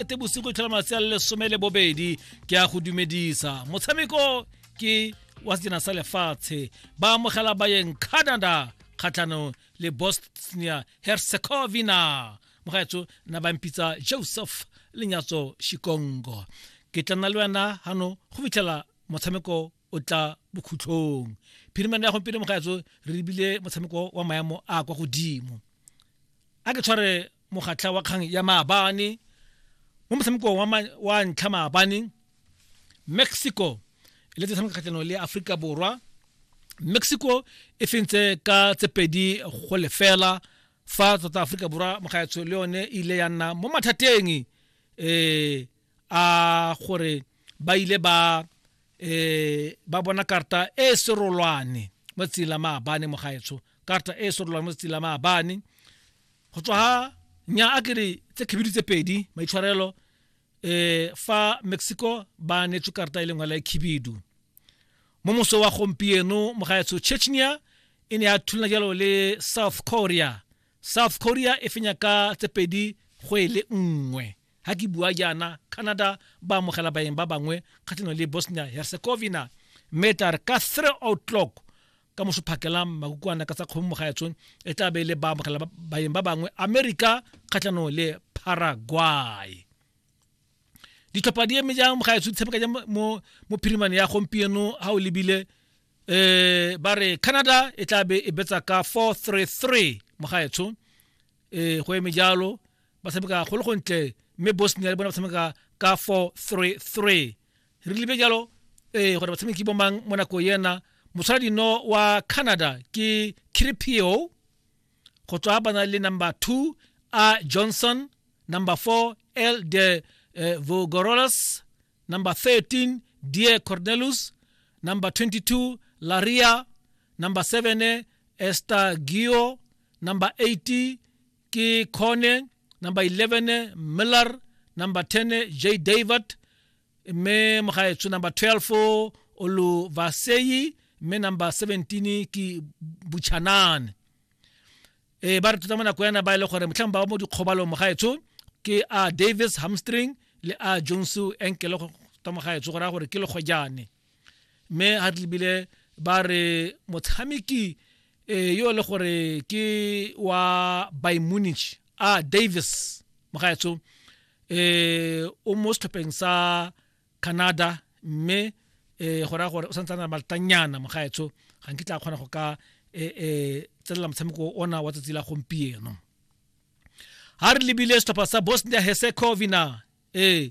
ete bosigo itlhola malatsi a le lesome le bobedi ke a go dumedisa motshameko ke wa sejana sa lefatshe ba amogela bayeng canada kgatlhanong le bosnia herzegovina mogaetso na ba mpitsa joseph lenyatso shikongo ke tla nna le wena gano go fitlhela motshameko o tla bokhutlhong phirimane ya gompieno mogaetso re lebile motshameko wa maemo a kwa godimo a ke tshware mogatlha wa kgang ya maabane mo motshamekong wa, wa ntlha maabane mexico e le tshameka kgatlhanong le aforika borwa mexico e fentse ka tse pedi go lefela fa tota aforika borwa mogaetsho le yone e ile ya nna mo mathateng um a gore ba ile ba eh ba bona karta e serolwane mo tsela maabane mo gaetsho karta e serolwane mo tsela maabane go tswa ha nya a kere tse khibidu tse pedi maitshwarelo eh fa Mexico ba netswe karta e lengwe la khibidu mo moso wa gompieno mo gaetsho Chechnya e ne ya thulana jalo le South Korea South Korea e fenya ka tse pedi go e le nngwe Ga ke bua jaana, Canada ba amogela baeng ba bangwe kgatlhanong le Bosnia-Herzegovina mme e tla re ka 3 o'clock ka mosophakela makukuana ka tsa kgomo mo gaetshong e tla be e le ba amogela baeng ba bangwe America kgatlhanong le Paraguay. Ditlhopha di eme jang mo gaetsho di tshameka jang mo mo phirimane ya gompieno ha o lebile eh ba re Canada e tla be e betsa ka 433 mo gaetsho eh go eme jalo ba tshameka go le gontle mme bosnia le bone ba tshameka ka 4-3-3 re lebe jalo ee gore batshameki bo mang mo nako ena mosala dino wa canada ke cripio go tswa ba na le number 2 a johnson number 4 el de eh, vogorolas number 13 die cornelus number 22 laria number 7 estagio number 80 ke Khone number 11 Miller number 10 J David mme mogaetsho number 12 Oluvaseyi mme number 17 ke Buchanane e ba re tota mo nako yana ba e le gore motlhang ba mo dikgobalong mogaetsho ke a Davis Hamstring le a Jones enkele tota mogaetsho go raya gore ke legojane mme ga tlebile ba re motshameki eh, yo le gore ke wa by munich a ah, davis mogaetsho eh o mo setlhopheng sa canada mme eh go raya gore o santse na maltanyana mogaetsho ga nke tla kgona go ka eh, eh tselela motshameko ona wa tsatsi la gompieno ha re lebile setlhopha sa bosnia herzegovina eh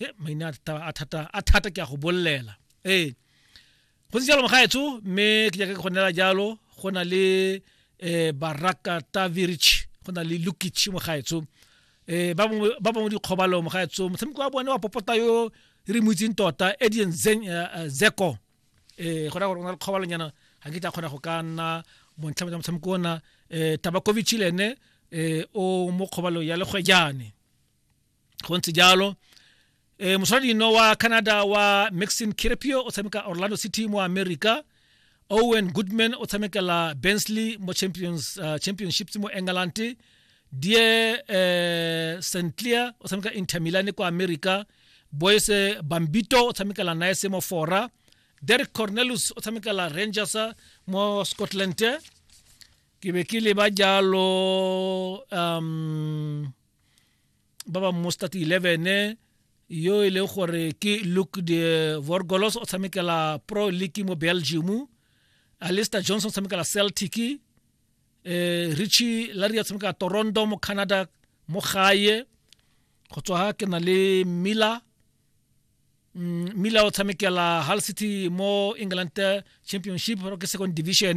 e maina a thata a thata ke a go bolelela ee go ntse jalo mogaetsho mme ke jaaka ke go nela jalo go na le um baraka tavirich go na le lukic mogaetsho um ba bangwe dikgobalo mogaetsho motshameko wa bone wa popota yo re mo itseng tota edian zeko um go raya gore o na le kgobalonyana ga ke tla kgona go ka nna montlha motshameko ona um tabakovic le ene um o mo kgobalo ya legwejane go ntse jalo eh mosadino wa Canada wa Maxim Kirpio o tshameka Orlando City mo America Owen Goodman o tshamekela Bensley mo Champions uh, Championships mo England Die eh St Clair o tshameka Inter Milan kwa America Boyce Bambito o tshamekela Nice mo Fora Derek Cornelius o tshamekela Rangers mo Scotland ke be ke leba jalo um ba ba mo start 11 yo e leng gore ke luke de vorgolos o tshamekela pro league mo belgium alister johnson o tshamekela celtic eh richie larry o tshamekela toronto mo canada mo gae go tswa ke na le miller mm, miller o tshamekela hull city mo england championship ke second division